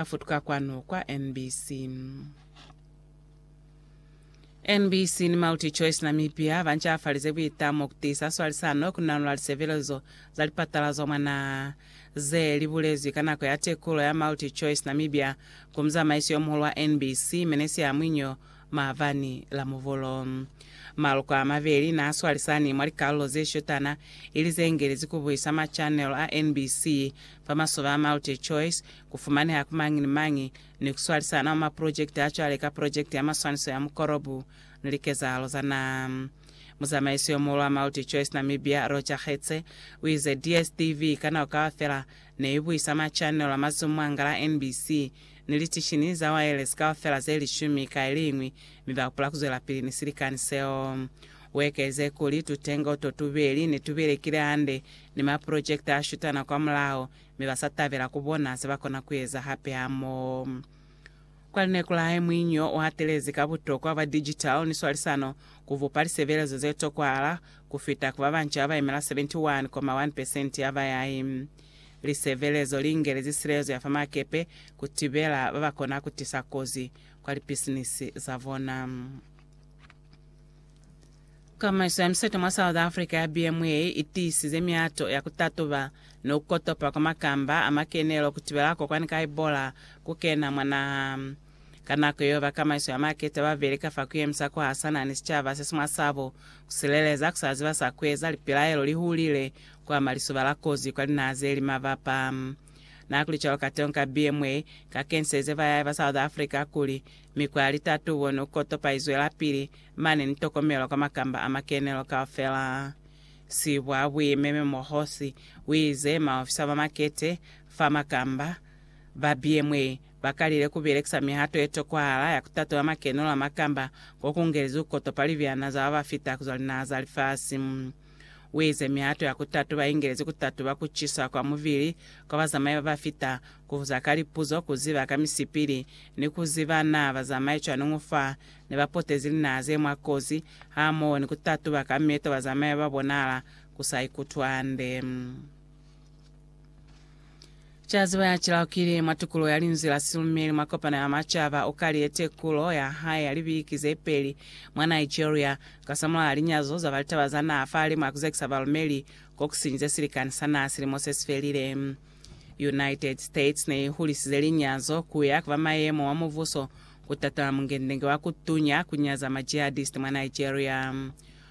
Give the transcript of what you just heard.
a futuka kwanu kwa NBC. NBC ni MultiChoice Namibia ba ncafalize buitamo ku tiisa swalisano ku nanula lisebelezo za lipatala zwa mwa naha. Ze li bulezwi ka nako ya tekulo ya MultiChoice Namibia ku muzamaisi yo muhulu wa NBC, Menesia Mwinyo maabani la Muvhulu. Maloko a mabeli n'a swalisani mwa likalulo ze shotana, ili ze ngelezi ku buisa machanelo a NBC fa masoba a MultiChoice, ku fumaneha ku mañi ni mañi, ni ku swalisana mwa maprojekiti a cwale ka Projekiti ya Maswaniso ya Mukolobo ni Likezahalo za Naha. Muzamaisi yo muhulu wa MultiChoice Namibia, Roger Getse, u ize, DSTV ka nako kaufela ne i buisa machanelo a mazumu a nga la NBC ni litishini za waelesi kaufela ze lishumi ka iliñwi, mi ba hupula ku zwelapili ni silikani seo. U ekelize kuli, Tutengo to tubeli ne tu belekile hande ni maprojekiti a shutana kwamulaho mi ba sa tabela ku bona ze ba kona ku eza hape hamoho. Kwa lineku la hae, muinyi yo u hatelezi ka butokwa bwa digital ni swalisano ku bupa lisebelezo ze tokwahala ku fita ku ba banca ba yemela 71.1 pesenti ya bayahi. Lisebelezo li ingelezi silezo ya fa makepe ku tibela ba ba kona ku tisa kozi kwa lipisinisi za bona. Kamaiso ya miseto mwa South Africa ya BMA i tiisize miato ya ku tatuba ni ku kotopa kwa makamba a makenelo ku tibela kokwani ka Ebola ku kena mwa naha. Ka nako yeo, ba kamaiso ya maketa ba beli ka fa ku yemisa ku hasana ni sicaba se si mwa sabo, ku sileleza, ku sa ziba sa ku eza, lipilaelo li hulile, ku ama lisuba la kozi kwa linaha ze li mabapa. Naha kuli cwalo kateñi ka BMA, ka kenselize bayai ba South Africa kuli, Mikwa ya litatubo ni kukotopa izwelapili, mane ni tokomelo ka makamba a makenelo kaufela. Sibwa Buimeme Mohosi uize maofisa ba makete fa makamba ba BMA bakalile kubelekisa mihato yetokwahala ya kutatula makenelo a makamba kokungelezi kukotopa libyana za babafita kuzwa linaha za lifasi. Uize mihato ya kutatuba ingelezi kutatuba kucisa kwa mubili kwa bazamai babafita, kubuza ka lipuzo, kuziba ka misipili, ni kuziba naa bazamai cwani ngo fa ne bapotezi linaha ze mwa kozi, hamoho ni kutatuba ka meeto bazamai babonahala kusa ikutwi hande. Caziba ya cilaukile mwa tukulo ya linzwi la silumeli mwa kopano ya macaba o kaliye tekulo ya hae ya libiki ze peli mwa Nigeria kasamulaha linyazo zaba litaba za naha fahali mwa kuzekisa balumeli kokusinyize silikani sa naha silimo sesifelile. United States ne ihulisize linyazo kuya kaba mayemo wa mubuso kutatola mungendenge wa kutunya kunyaza ma jihadist mwa Nigeria.